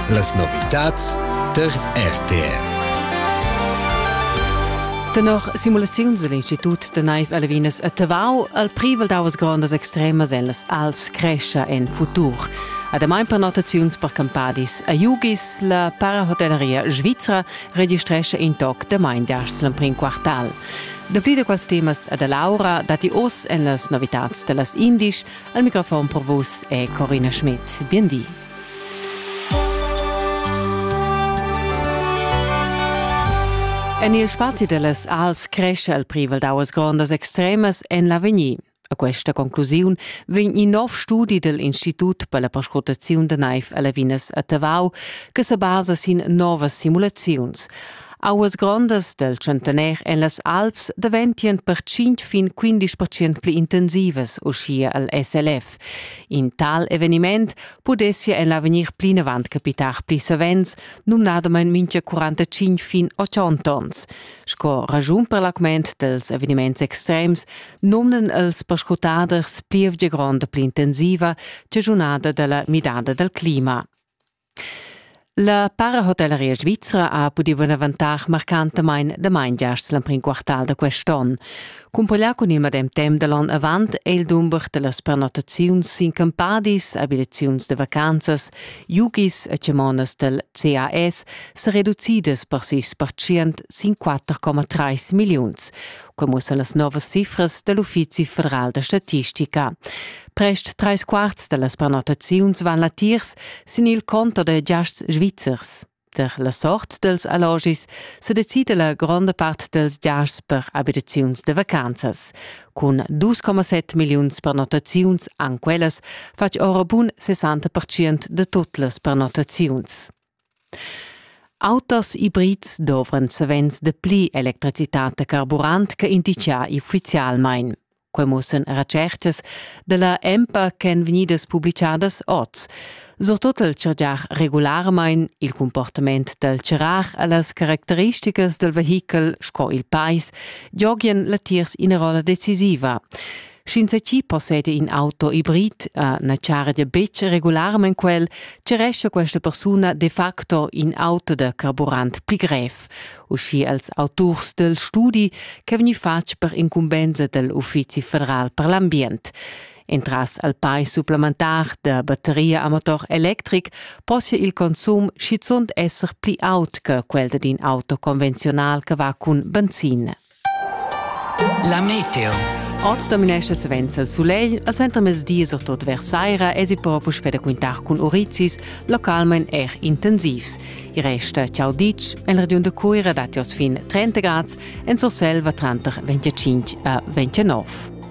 Las novitads tar RTR. Tenor simulaziuns egl Institut da neiv a Levinas a Tavau al privel davas grondas extremas ellas Alps crescia en futur. Ademai per notaziuns per campadis a Jugis, la parahotelleria svizra registrescha in toc da main diars l'emprim quartal. Dapli da quels temas ad Laura datti oz en las novitads da las indisch, El microfon per vus è Corina Schmidt. Biendi. En il spazi dellas Alps cresce il privel d'auas grondas extremas en l'avegnir. A questa conclusiun vegn in nov studi dell Institut per la perscrutaziun da naiv a Lavinas a Tavau che se basa sin novas simulaziuns. Auas grondas del tschentener en las Alps daventien per tschient fin quindisch percent pli intensivas, uschia al SLF. In tal eveniment pudessia en l'avegnir plinavant capitar pli savens, numnadamain mintga 45 fin 80 onns. Sco ragiun per l'augment dels eveniments extrems nomnan els perscrutaders plievgia gronda pli intensiva, chaschunada dalla midada del clima. La parahotelleria svizra ha pudì bunavantar marcantamain damain giasts l'emprim quartal da quest onn. Cumpaglià cun il medem temp da l'onn avant è il dumber da las prenotaziuns sin campadis, abitaziuns da vacanzas, yogis e chamonas dal CAS sa reducidas per sis percent sin 4,3 milliuns. Quai mussa las novas cifras da l'Uffizi federal da statistica. Prest trais quarts da las prenotaziuns van latiers sin il conto da giasts svizzers. Per la sort dels allogis se decide la gronda part dels giasts per abitaziuns de vacanzas. Cun 2,7 milliuns prenotaziuns an quellas fatg ora bun 60% de tot las prenotaziuns. Autos ibrids dovran savens de pli electricitat da carburant che indicià ufficialmein. Quai mussan retschertas da la EMPA ch'èn vegnidas publichadas oz, surtut il chargiar regularmain il cumportament dal charar a las caracteristicas dal vehichel sco il pais giogian latiers ina rolla decisiva. Sch'ins chi posseda in auto hibrid, uh, na chargia betg regularmain quel, charescha questa persuna de facto in auto da carburant pli grev. uschi els auturs del studi che vegni fatg per incumbenza del Uffizi federal per l'ambient. Entras al pai supplementar da batteria a motor electric possia il consum schizunt esser pli aut che quel d'in auto convenzional che va cun benzina. La meteo. Oz dominescha savens il sulegl, al suentermezdi e surtut vers saira esi però puspè da quintar cun urizis, localmain er intensivs. Il rest ciao ditg, en regiun da Cuira datti oz fin 30 grads, en Surselva tranter 25 e 29.